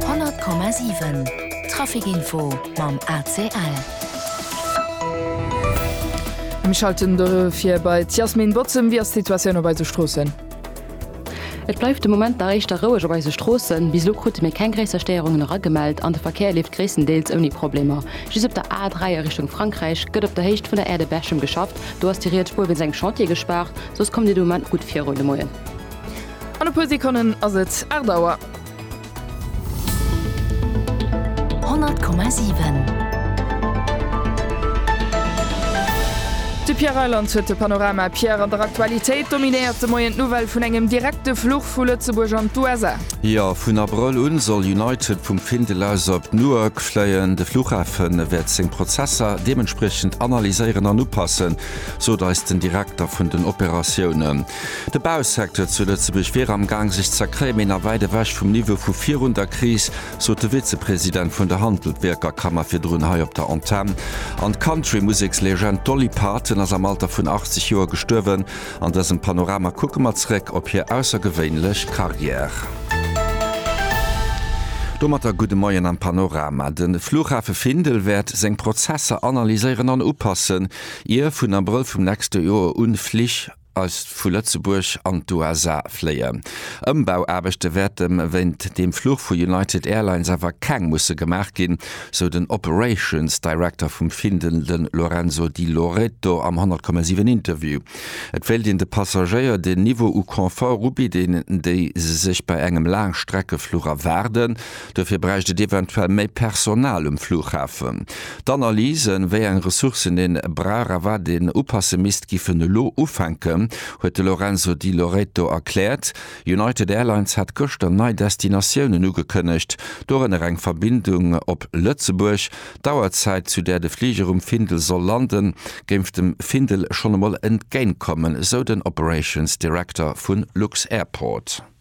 100,7 Trafic Info mam ACL. Ech schalte dofir bei d'Yasmine Bozem. Wéi ass d'Situatioun op eise Stroossen? Et bleift de Moment nach éischter roueg op eise Stroossen. Bis elo krute mir keng gréisser Stéierungen eragemellt an de Verkéier leeft gréisstendeels ouni Problemer. Just op der A3 a Richtung Frankräich gëtt op der Héicht vun der Aire de Berchem geschafft. Do ass déi riets Spuer wéinst engem Chantier gespaart. Soss kommt Dir de Moment gutt virun de Moien. An e puer Sekonnen ass et 8 Auer. 100,7. De Pierre Reyland huet de Panorama. Pierre, an der Aktualitéit dominéiert de Moien d'Nouvelle vun engem direkte Fluch vu Lëtzebuerg an d'USA. Jo, vun Abrëll un soll United vum Findel aus op Newark fléien. De Fluchhafe wäert seng Prozesser deementspriechend analyséieren an upassen, sot eis den Direkter vun den Operatiounen. De Bausecteur zu Lëtzebuerg wier am Gaang sech z'erkréien, mee nach wäit ewech vum Niveau vu virun der Kris, sot de Vizepresident vun der Handeltwierkerkammer virdrun hei op der Antenn. An d'Country-Musekslegend Dolly Parton ass am Alter vun 80 Joer gestuerwen. An dësem Panorama kucke mer zeréck op hir aussergewéinlech Karriär. Domatter gudde Moien am Panorama. De Flughafe Findel wäert seng Prozesser analyséieren an upassen, ier vun Abrëll vum nächste Joer un Flich, eis vu Lëtzebuerg an d'USA fléien. Ëmbauaarbechte wäerte wéint deem Fluch vu United Airlines awer keng musse gemaach ginn, sou den Operations Director vum Findel, de Lorenzo Di Loreto am 100, 7 Interview. Et wéilt een de Passagéier den Niveau u Confort ubidden, déi se sech bei engem Laangstreckefluch erwaarden. Dofir bräicht et eventuell méi Personal um Flughafen. D'Analysen, wéi eng Ressourcen ee brauch a wat een upasse misst, giffen elo ufänken, huet de Lorenzo Di Loreto erkläert. United Airlines hat gëschter nei Destinatiounen ugekënnegt, dorënner eng Verbindung op Lëtzebuerg. D'Auerzäit, zu där de Fliger um Findel soll landen, géif dem Findel schonn emol entgéintkommen, esou den Operations Director vu lux-Airport.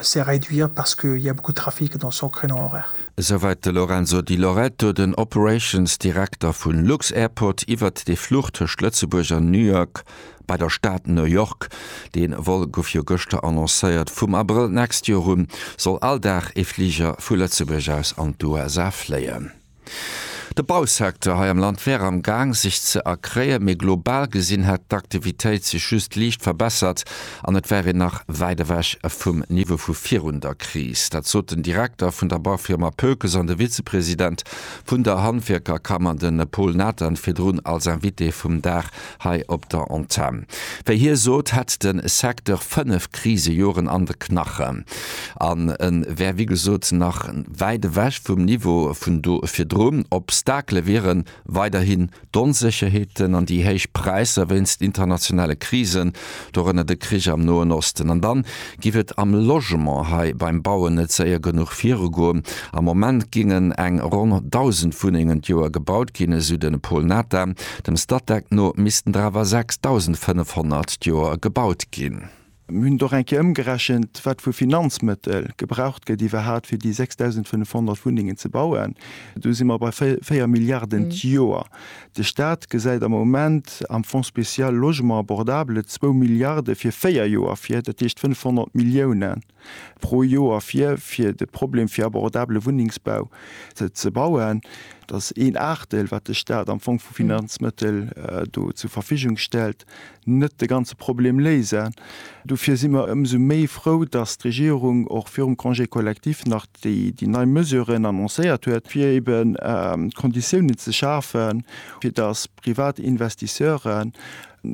se réduire parce qu'il y a beaucoup de trafic dans son créneau horaire. Esouwäit de Lorenzo Di Loreto, den Operations Direkter vu lux-Airport, iwwert dee Fluch tëscht Lëtzebuerg an New York bei der Stad New York. Dee Vol gouf jo gëschter annoncéiert. Vum Abrëll d'nächst Joer un soll all Dag ee Fliger vu Lëtzebuerg aus an d'USA fléien. De Bausecteur hei am Land wär am Gaang sech ze erkréien, mee global gesinn hätt d'Aktivitéit sech just liicht verbessert an et wär een nach wäit ewech vum Niveau vu virun der Kris. Dat sot den Direkter vun der Baufirma Pökes an de Vizepresident vun der Handwierkerkammer, de Paul Nathan, virdrun als Invité vum Dag hei op der Antenn. Wéi hie sot, hätt de Secteur fënnef Krisejoren an de Knachen an e wär wéi gesot nach wäit ewech vum Niveau vun do virdru. Obstakele wiere weiderhin d'Onsécherheeten an déi héich Präisser wéinst internationale Krisen, dorënner de Krich am Noen Osten. An dann giff et am Logement hei beim Bauen net séier genuch virugoen. Am Moment géingen eng ronn 1.000 Wunnengen d'Joer gebaut ginn, esou de Paul Natha. Dem Statec no missten der awer 6.500 d'Joer gebaut ginn. Mir hunn et och eng Kéier ëmgerechent, wat vu Finanzmëttel gebraucht gëtt iwwerhaat fir déi 6.500 Wunnengen ze bauen. Do si mer bei 4 Milliarden d'Joer. De Staat gesäit am Moment am Fonds spécial Logement abordable zwou Milliarde fir véier Joer vir, dat heescht 500 Millioune pro Joer vir, fir de Problem fir abordabele Wunnengsbau ze bauen. Dat ass een Aachtdeel, wat de Staat am Fong vu Finanzmëttel do zur Verfügung stellt. net de ganze Problem léisen. Dofir si mer ëmsou méi frou, dass d'Regierung och virum Congé collectif nach déi nei Mesuren annoncéiert huet, fir eben d'Konditiounen ze schafen, fir dass privat Investisseuren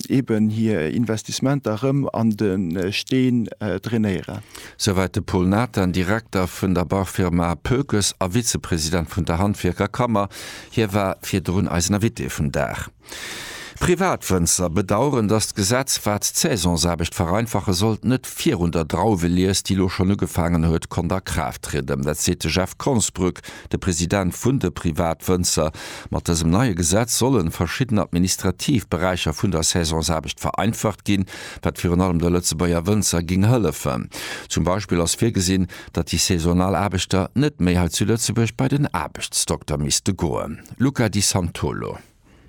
eben hir Investissementer erëm an de Steen drainéieren. Souwäit de Paul Nathan, Direkter vun der Bauffirma Pökes a Vizepresident vun der Handwierkerkammer. Hie war virdrun eisen Invité vum Dag. Privatwënzer bedaueren, datt d'Gesetz, wat d'Saisonsaarbecht vereinfache sollt, net virun der Drauwelies, déi elo schonn ugefaangen huet, konnt a Kraaft trieden. Dat seet de Jeff Konsbrück, de President vun de Privatwënzer. Mat dësem neie Gesetz solle verschidden administrativ Beräicher vun der Saisonsaarbecht vereinfacht ginn, wat virun allem de Lëtzebuerger Wënzer géing hëllefen. Zum Beispill ass virgesinn, datt déi saisonal Aarbechter net méi hei zu Lëtzebuerg bei den Aarbechtsdokter misste goen. Luca Di Santolo.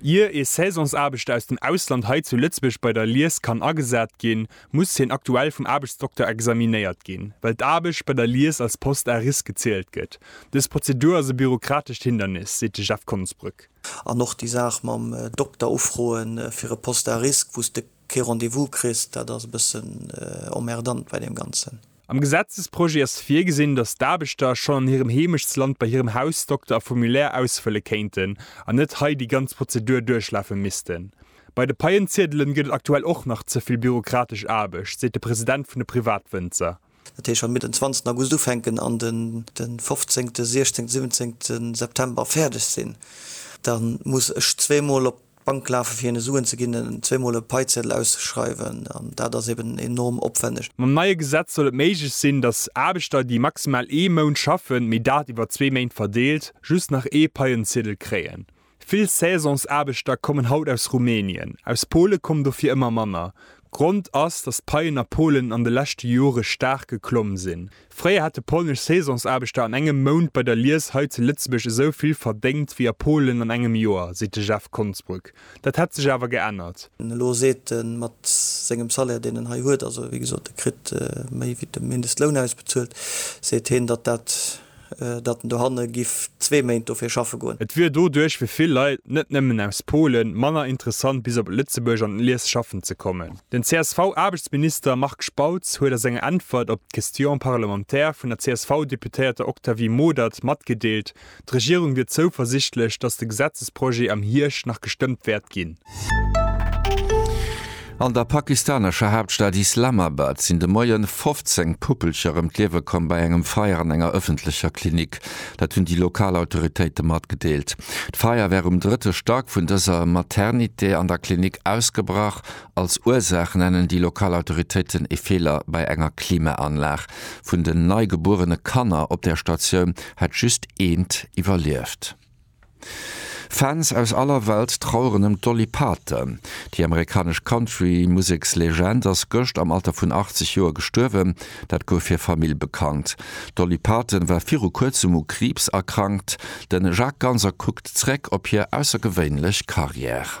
Ier ee Saisonsaarbechter aus dem Ausland hei zu Lëtzebuerg bei der Lies kann agesat ginn, muss hien aktuell vum Aarbechtsdokter examinéiert ginn, well d'Aarbecht bei der Lies als Poste à risque gezielt gëtt. Dës Prozedur ass e bürokratescht Hindernis, seet de Jeff Konsbrück. An och déi Saach mam Dokter ufroe fir e Poste à risque, wou s de kee Rendez-vous kriss, dat ass e bëssen emmerdant bei deem Ganzen. Am Gesetzesprojet ass virgesinn, datt d'Aarbechter schonn an hirem Heemechtsland bei hirem Hausdokter e Formulaire ausfëlle kéinten an net hei déi ganz Prozedur duerchlafe missten. Bei de Paien-Ziedelen gëtt et aktuell och nach ze vill bürokratesch Aarbecht, seet de President vun de Privatwënzer. Dat heescht, wa mir den 20 August ufänken an de 15, 16, 17 September fäerdeg sinn, da muss ech zweemol op D'Bank lafe fir hinne Suen ze ginn zweemol e Paizeddel auszeschreiwen an dat ass eben enorm opwänneg. Mam neie Gesetz soll et méiglech sinn, datt Aarbechter, déi maximal ee Mount schaffen, mee dat iwwer zwee Méint verdeelt, just nach ee Paienziedel kréien. Vill Saisonsaarbechter kommen haut aus Rumänien. Aus Pole kommen dofir ëmmer manner. Grond ass, datt d'Paien a Polen an de leschte Jore staark geklomm sinn. Fréier hate polnesch Saisonsaarbechter an engem Mount bei der Lies hei zu Lëtzebuerg esou vill verdéngt wéi a Polen an engem Joer, seet de Jeff Konsbrück. Dat hätt sech awer geännert. Elo seet en, mat sengem Salaire, deen en hei huet, also wéi gesot, e kritt méi wéi de Mindestloun ausbezuelt, seet hien, datt dat, datt en dohanne giff zwee Méint dofir schaffe goen. Et wier doduerch fir vill Leit, net nëmmen aus Polen, manner interessant bis op Lëtzebuerg an d'Lies schaffen ze kommen. Den CSV-Aarbechtsminister Marc Spautz huet a senger Äntwert op d'Question parlementaire vun der CSV-Deputéierter Octavie Modert matgedeelt, d'Regierung wier zouversichtlech, datt de Gesetzesprojet am Hierscht nach gestëmmt wäert ginn. An der pakistanescher Haaptstad Islamabad sinn de Moie 15 Puppelcher ëm d'Liewe komm bei engem Feier an enger ëffentlecher Klinik. Dat hunn déi lokal Autoritéite matgedeelt. D'Feier wär um drëtte Stack vun dëser Maternité an der Klinik ausgebrach. Als Ursaach nennen déi lokal Autoritéiten ee Feeler bei enger Klimaanlag. Vun den nei gebuerene Kanner op der Statioun hätt just eent iwwerlieft. Fans aus aller Welt traueren ëm d'Dolly Parton. Déi amerikanesch Country-Musekslegend ass gëscht am Alter vun 80 Joer gestuerwen. Dat gouf hir Famill bekannt. D'Dolly Parton war viru kuerzem u Kriibs erkrankt. De Jacques Ganser kuckt zeréck op hir aussergewéinlech Karriär.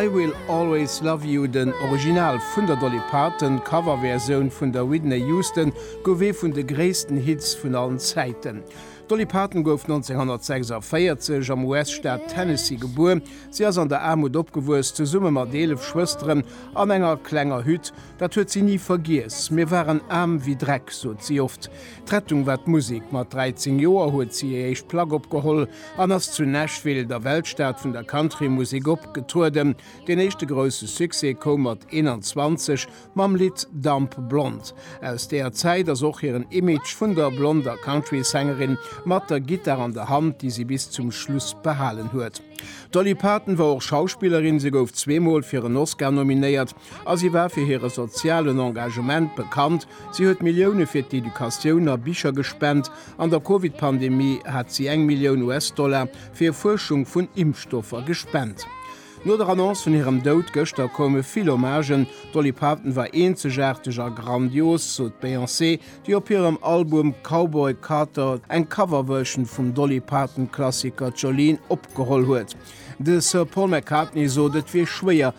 I Will Always Love You, den Original vun der Dolly Parton, d'Coverversioun vun der Whitney Houston, gouf ee vun de gréissten Hits vun allen Zäiten. D'Dolly Parton gouf 1946 am US-Staat Tennessee gebuer. Si ass an der Aarmut opgewuess, zesumme mat 11 Schwësteren an enger klenger Hütt. Dat huet si ni vergiess. Mir waren aarm wéi Dreck, sot si oft. D'Rettung war d'Musek. Mat 13 Joer huet si hir éischt Plack opgeholl an ass zu Nashville, der Weltstad vun der Countrymusek, opgetrueden. Den éischte grousse Succès koum mat 21 mam Lidd Dumb Blonde. Aus deeër Zäit ass och hiren Image vun der blonder Countrysängerin mat der Gittar an der Hand, déi si bis zum Schluss behalen huet. D'Dolly Parton war och Schauspillerin. Si gouf zweemol fir en Oscar nominéiert A si war fir hire sozialen Engagement bekannt, si huet Millioune fir d'Educatioun a Bicher gespent. An der Covid-Pandemie hat si eng Millioun US-Dollar fir Fuerschung vun Impfstoffer gespent. No der Annonce vun hirem Doud gëschter koume vill Hommagen. D'Dolly Parton war eenzegaarteg a grandios, sot d'Beyoncé, déi op hirem Album Cowboy Carter eng Coverversion vum Dolly Parton-Klassiker Jolene opgeholl huet. De Sir Paul McCartney sot, et wier schwéier,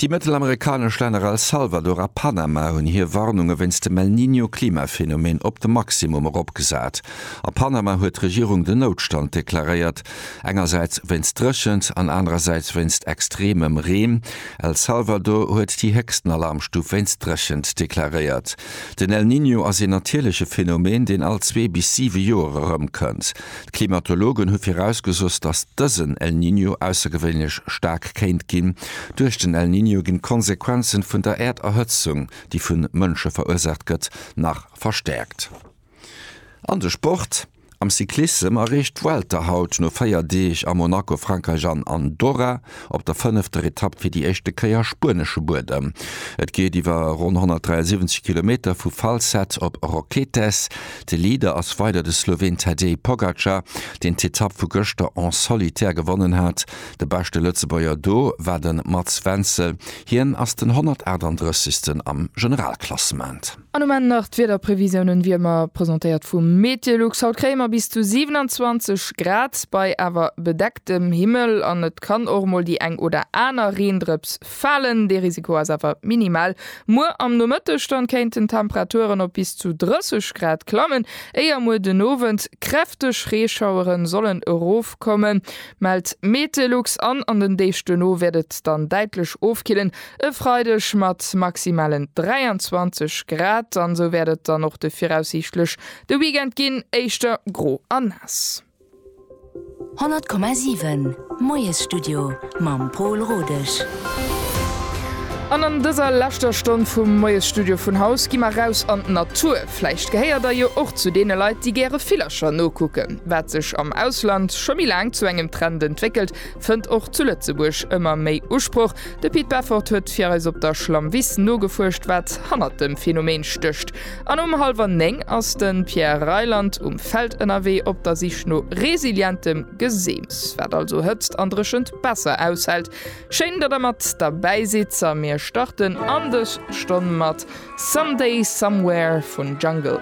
Déi mëttelamerikanesch Länner El Salvador a Panama hunn hir Warnunge wéinst dem El Niño-Klimaphenomen op de Maximum eropgesat. A Panama huet d'Regierung den Noutstand deklaréiert, engersäits wéinst Dréchent an anerersäits wéinst extremem Reen. El Salvador huet déi héchsten Alarmstuf wéinst Dréchent deklaréiert. Den El Niño ass een natierleche Phenomen, deen all zwee bis siwe Joer erëmkënnt. D'Klimatologen hu virausgesoss, datt dësen El Niño aussergewéinlech staark kéint ginn. Duerch den El Niño ginn d'Konsequenzen vun der Äerderhëtzung, déi vu Mënsche verursaacht gëtt, nach verstäerkt. An de Sport, Am Cyclissem erreecht d'Vuelta haut no 4 Deeg a Monaco, Frankräich an Andorra op der fënnefter Etapp fir déi éischte Kéier spuenesche Buedem. Et geet iwwer ronn 173 Kilometer vu Falset op Roquetes. De Leader ass weider de Sloween Tadej Pogacar, deen d'Etapp vu gëschter en solitaire gewonnen hat. De beschte Lëtzebuerger do war de Mats Wenzel, hien ass den 138. am Generalklassement. An um Enn nach d'Wiederprevisiounen, wéi ëmmer presentéiert vu Meteolux. Haut kréie mer bis zu 27 Grad bei awer bedecktem Himmel an et kann och mol déi eng oder aner Reendrëps falen. Dee Risiko ass awer minimal. Muer am Nomëtteg dann kéinten d'Temperaturen op bis zu 30 Grad klammen, éier muer den Owend kräfteg Reeschaueren sollen erofkommen, mellt Meteolux. An an den Deeg duerno wäert et dann däitlech ofkillen. E Freideg mat maximalen 23 Grad an esou wäert et dann och de viraussiichtlech de Weekend ginn, éischter gro a naass. 100,7 Moiesstudio mam Pol Rodesch. An an dëser leschter Stonn vum Moiesstudio vun Haus gi mer raus an d'Natur. Vläicht gehéiert der jo och zu deene Leit, déi gäre Villercher nokucken. Wat sech am Ausland scho méi laang zu engem Trend entwéckelt, fënnt och zu Lëtzebuerg ëmmer méi Usproch. De Pit Beffort huet fir eis op der Schlammwiss nogefuerscht, wat hannert dem Phänomen stécht. An um hallwer 9 ass de Pierre Reyland um Feld ënnerwee op der Sich no resilientem Geseems, wat also Hëtzt an Dréchent besser aushält. Schéin, datt der mat derbäi sidd a mir starten an dës Stonn mat Someday Somewhere vun Jungle.